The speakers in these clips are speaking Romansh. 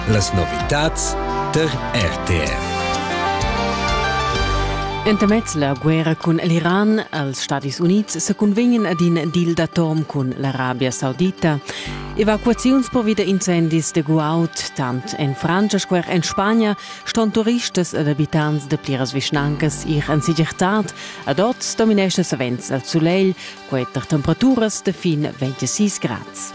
Las novitads tar RTR. Entamez la guerra cun l'Iran als Stadis Unids se cunvegnan ad in deal d'atom cun l'Arabia Saudita. Evacuaziuns per wieder incendis de Guaud, tant en Francia sco en Spagna, ston turistas ed abitants de pliras vischnancas ir en segirtad. A dort dominesce savens el sulegl, quei tar temperaturas de fin 26 grads.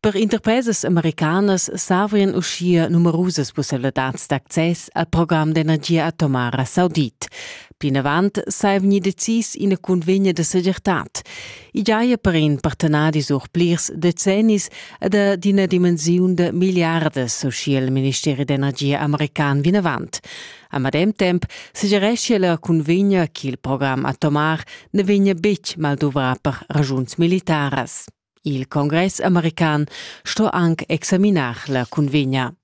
Per interpresas americanas savian uschia numerusas pussibilitads d'access al program d'energia atomara saudit. Plinavant sai vegnir decis ina cunvegna da segirtad. I giaja per in partenadi sur plirs decennis ed d'ina dimensiun da miliardas, uschia il ministeri d'energia american vinavant. A medem temp sugereschia la cunvegna ch'il program atomar ne vegnia betg mal duvrà per ragiuns militaras. Il congress american sto anc examinar la cunvegna.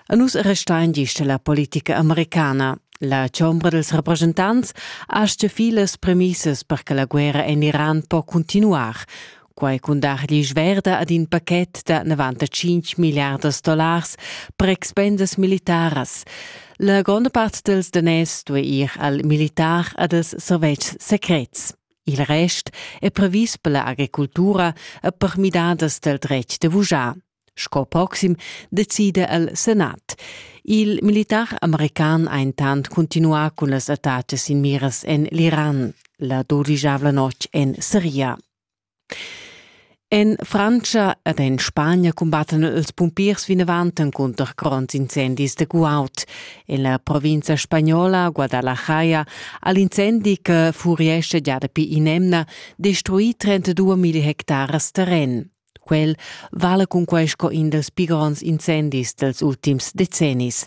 A nus restain gist la politica americana. La chombra dels representants astga fi las premissas per che la guerra en Iran po continuar, quai cun dar gli verda ad in paket da 95 miliardas dollars per expendas militaras. La gronda part dels daners due ir al militar a dels servetschs secrets. Il rest è previs per la agricultura e per midadas dal dretg da vujar. Sco proxim decida el Senat. Il militar american ha intant continuà cun las attacas in miras en l'Iran, la dodigiavla notg en Siria. En Frantscha ed en Spagna cumbattan ils pumpiers vinavant encunter gronds incendis de guaud. En la provincia spagnola Guadalajara ha l'incendi che furiesce già dapi in'emna destruì 32.000 hectares terren. Quel vale cun quai sco in dels pli gronds incendis dels ultims decennis.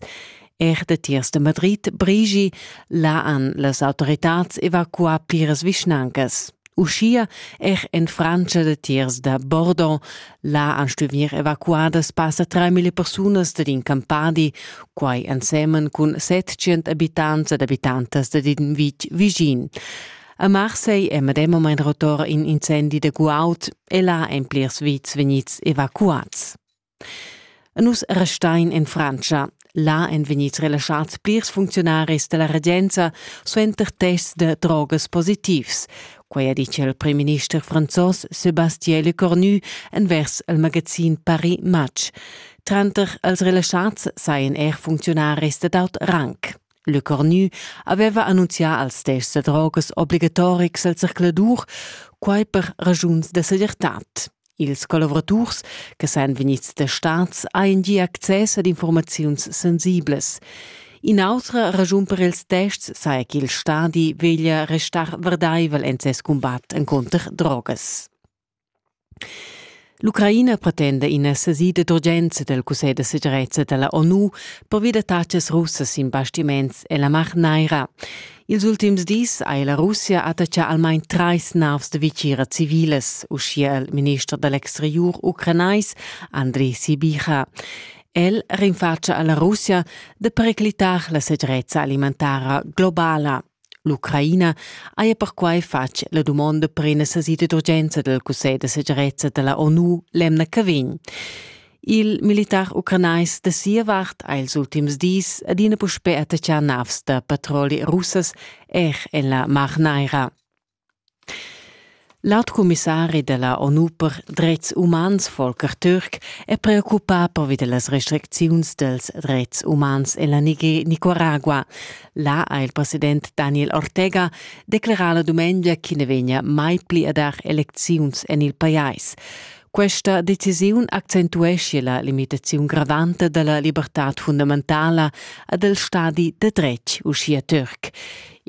Er datiers da Madrid brigi là han las autoritads evacuà pliras vischnancas. Uschia er en Frantscha datiers da Bordeaux, là han stuì evacuadas passa 3.000 persunas dad in campadi, quai ensemen cun 700 abitants ed abitantas dad in vitg vischin. A Marseille è medem moment rotor in incendi da guaud e là èn plirs vits vegnids evacuads. Nus restain in Frantscha. Là èn vegnids relaschads plirs funcziunaris da la regenza suenter tests da drogas positivs. Quai ha ditg il primminister franzos Sébastien Lecornu envers il magazin Paris Match. Tranter els relaschads sajan er funcziunaris dad aut rang. Lecornu aveva annunzià als tests da drogas obligatorics al circuladur, quai per ragiuns da segirtad. Ils collavuraturs che san vegnids testads hajan gia access ad informaziuns sensiblas. In'autra raschun per ils tests saja ch'il stadi veglia restar verdaivel en ses cumbat encunter drogas. L'Ucraina pretenda ina sesida d'urgenza del Cussegl de segirezza della ONU pervia da taxas russas in bastiments e la mar naira. Ils ultims dis ha la Russia attachà almain trais navs da vitgira civilas, uschia il minister da l'exteriur ucranais Andrei Sibicha. El rinfatscha a la Russia da periclitar la segirezza alimentara globala. L'Ucraina haja perquai fatg la dumonda per ina sasida d'urgenza del Cussegl da segirezza della ONU l'emna che vegn. Il militar ucranais da sia vart ha ils ultims dis adina puspè attaccà navs da patroli russas er en la Mar Naira. L'alt commissari da la ONU per dretgs umans Volker Türk è preoccupà pervi da las restricziuns dels dretgs umans en la Nicaragua. Là ha il president Daniel Ortega declerà la dumengia che ne vegna mai pli a dar elecziuns en il pajais. Questa decisiun accentuescia la limitaziun gravanta dalla libertad fundamentala ad el stadi de dretg uschia Türk.